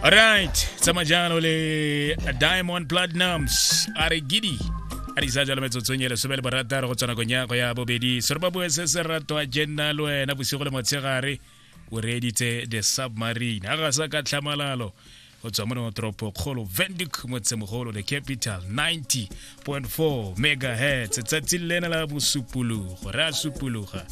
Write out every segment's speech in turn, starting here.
Alright, tsamajano le Diamond Platinums a re gidi a di sa jalo metsotsong e lesome le borataro go tswana konyago ya bobedi sore ba bue se se rato a jenna le wena bosigo le motshegare o reeditse the submarine a ga sa ka tlhamalalo go tswa mo toropo kgolo vendic motsemogolo the capital 90 1.4 megahertz tsatsi le lena la bosupologo re a supologa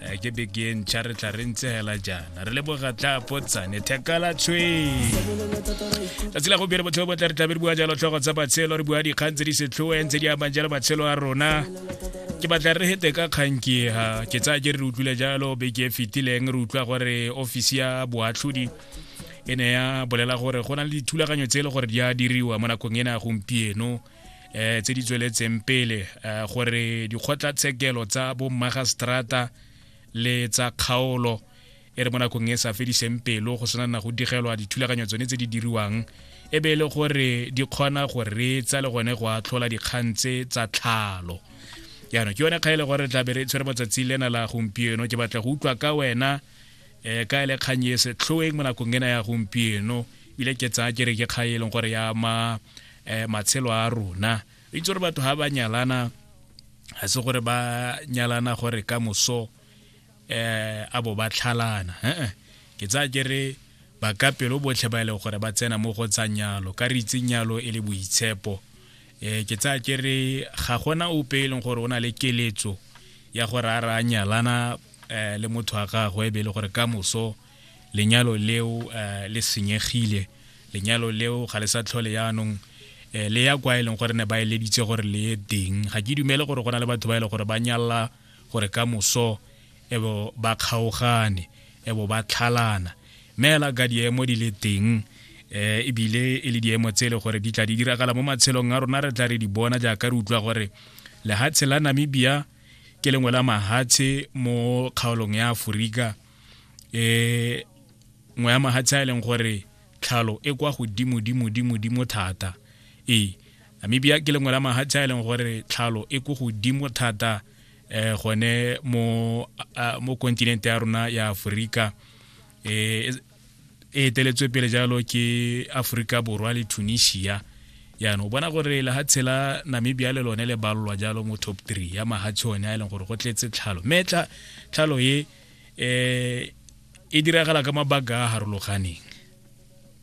eh, ke beke ntšha re tla re ntse hela jaana re leboga tla potsane thekala tshweng tsatsi la gompieno botshelo bo tla re tlabe re bua jalo tlhogo tsa matshelo re bua dikgang tse di setlhoeng tse di amang jalo matshelo a rona ke batla re hete ka kgankiega ke tsaya ke re re utlwile jalo beke e fetileng re utlwa gore ofisi ya boatlhodi e ne ya bolela gore go na le dithulaganyo tse e le gore di a diriwa mo nakong ena ya gompieno um tse di tsweletseng pele um gore dikgotlatshekelo tsa bommagistrata le tsa kgaolo e re mo nakong e sa fediseng pelo go sena na go digelwa dithulaganyo tsone tse di diriwang e be e le gore di kgona go reetsa le gone go atlhola dikgang tse tsa tlhalo jaanong ke yone kga e le gore tlabe re tshwere matsatsi lena la gompieno ke batla go utlwa ka wena um ka ele kgang e setlhoeng mo nakong ena ya gompieno ebile ke tsaya ke re ke kgang e leng gore ya ama um matshelo a rona re itse gore batho ga ba nyalana ga se gore ba nyalana gore ka moso um a bo ba tlhalana ee ke tsaya ke re ba ka pelo botlhe ba e leng gore ba tsena mo go tsa nyalo ka re itse nyalo e le boitshepo um ke tsaya ke re ga gona ope e leng gore o na le keletso ya gore a ra nyalana um le motho wa gagwe be e le gore ka moso lenyalo leo um le senyegile lenyalo leo ga le sa tlhole yaanong um le ya kwa e leng gore ne ba eleditse gore le ye teng ga ke dumele gore go na le batho ba e leng gore ba nyalla gore ka moso ebo ba kgaogane ebo ba tlhalana mme ela ka diemo di le teng eh ebile e le diemo tse le gore di tla di diragala mo matshelong a rona re tla re di bona jaaka re utlwa gore lehatshe la namibia ke lengwe la mahatshe mo kgaolong ya aforika um eh, ngwe ya mahatshe a e leng gore tlhalo e kwa godimodimodimodimo thata ee namibia ke lengwe la mahatshe a e leng gore tlhalo e ko godimo thata um gone mo kontinente ya rona ya aforika um e eteletswe pele jalo ke aforika borwa le tunisia yaanong o bona gore lehatshe la namibia le lone le balolwa jalo mo top three ya mahatshe one a e leng gore go tletse tlhalo mme tlhalo e um e diragala ka mabaka a harologaneng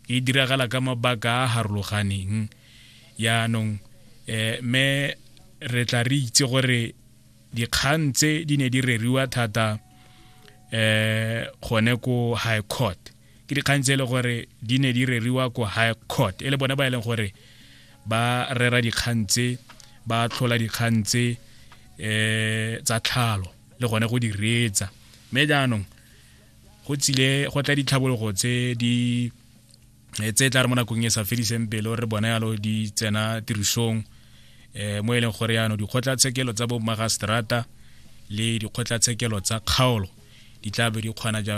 e diragala ka mabaka a harologaneng yaanong um mme re tla re itse gore dikgang tse di ne di reriwa thata eh gone ko high court ke dikgang tse e le gore di ne di reriwa ko high court e le bone ba e leng gore ba rera dikgang tse ba tlhola dikgang tse eh tsa tlhalo le gone go di reetsa mme jaanong go tsile go tla ditlhabologo tse di eh, tse tla re mo nakong e sa fediseng pelo re bona yalo di tsena tirisong um mo e leng gore yaanong dikgotlatshekelo tsa bo magastrata le dikgotlatshekelo tsa kgaolo di tla be di kgona jalo